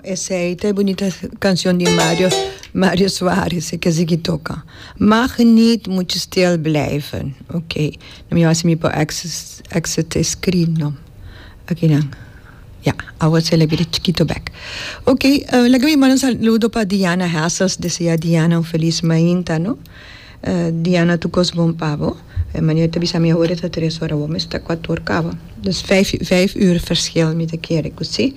Esey ta e bunita cancion di Mario Mario Suarez e kiss ki toca Mag niet moet je stil blijven ok no mi a si mi por access access e screen no akinan ya awa sele bira chikito bek ok laga mi manda un saludo pa Diana Hessels desear Diana un feliz mainta no. Diana tu kos bon pa bo. E Manuel ta bisa mi awor e ta tres ora awor mester ta kuat or kaba. Dus vijf vijf uur verschil mi ta kere ku si.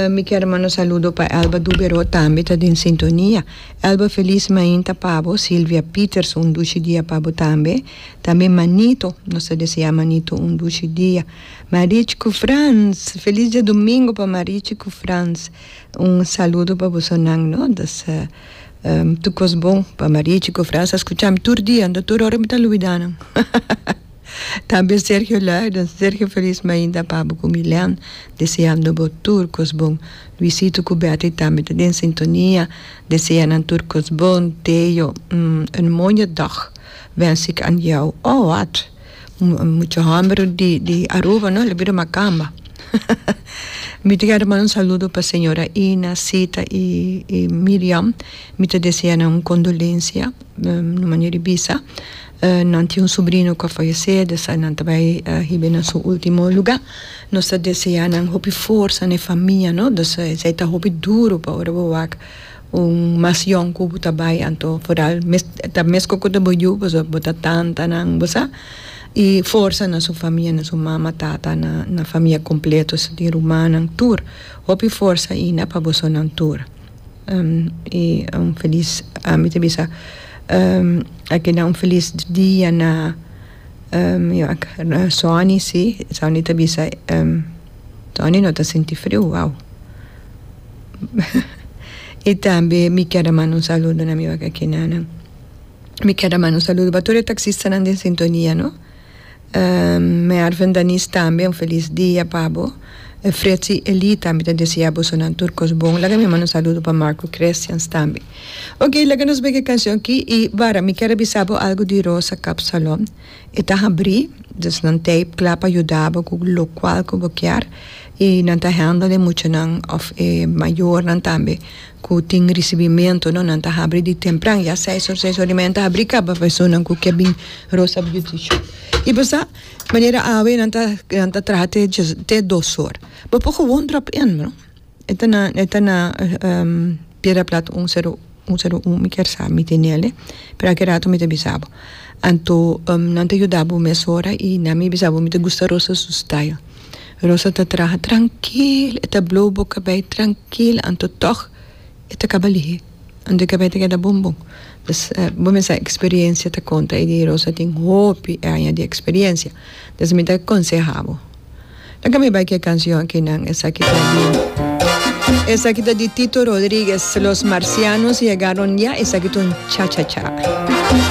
Mi kier manda saludo pa Elba Duberó tambe ta den sintonia. Elba felis mainta pa bo. Silvia Pieterse un dushi dia pa bo tambe. Tambe Manito nos ta desea Manito un dushi dia. Marich ku Frans felis diadumingu pa Marich ku Frans un saludo pa boso nan no. Tur cos bon pa Marichi cu Frans a scuchami tur dia, anto tur ora mi ta luida nan. Tambe Sergio Luijden, Sergio Feliz Mainda Pabo cu Milen deseando bo tur cos bon. Luisito cu Betty tambe ta den sintonia desea nan tur cos bon. Theo, Een mooie dag wens ik aan jou. Oh wat! Mucha homber di di Aruba no lo bira macamba mi ta kere manda un saludo pa señora Ina, Sita y y Miriam mi ta desea nan un condolencia na manera di bisa nan tin un sobrino cu a fallece di esai nan ta bay hibe na su ultimo lugar nos ta deseanan hopi forza na e famia no esai ta hopi duro pa ora bo wak Un mas yòn ku bo ta bai anto foral mes ta meskos ku ta bo yu pasobra bo ta tantanan bo sa i forsa na su famia na su mama tata na na famia kompleto su tin rumannan tur hopi forsa ina pa bosonan tur i un felis mi ta bisa a keda un felis dia na na Sony si Sony ta bisa Sony no ta sinti friu wou. y tambe mi kier a manda un saludo na mi wakakinannan. Mi kier a manda un saludo pa tur e taxistanan den sintonia no. Mervin Danis tambe un felis dia pa bo. Fritzi Elie tambe ta desea bosonan tur kos bon. Laga mi manda un saludo pa Marco Crestians tambe. Okay laga nos bay ki cancion aki y wara mi kier a bisa bo algo di Rosa Kapsalon. E ta habrí, dus nan teip kla pa yuda bo ku lokual ku bo kier, i nan ta hèndel e muchanan òf e mayornan tambe ku tin risibimentu, no. Nan ta habrí di tempran, ya seis or, seis or i media nan ta habrí kaba pa esunnan ku ke bin Rosa Beauty Shop. I bo sa manera awe nan ta nan ta traha te te dos or. Bo por gewoon drop in, no. E ta na e ta na piedra plat un sedu un sedu un mi kier sa mi tene ale pero ake rato mi ta bisa bo anto nan ta yuda bo mesora y nan mi bisa bo mi ta gusta rosa su style rosa ta traha trankil e ta blow bo kabay trankil anto tog e ta kaba lihe. Anto e kabé ta keda bon bon. Pues bo mester experiencia ta conta y di Rosa tin hopi aña di experiencia. Entonces mi ta aconseha bo. Laga mi bai cu e cancion aki nan. Esaki ta di Esaki ta di Tito Rodriguez, Los marcianos llegaron ya, esaki ta un cha cha cha.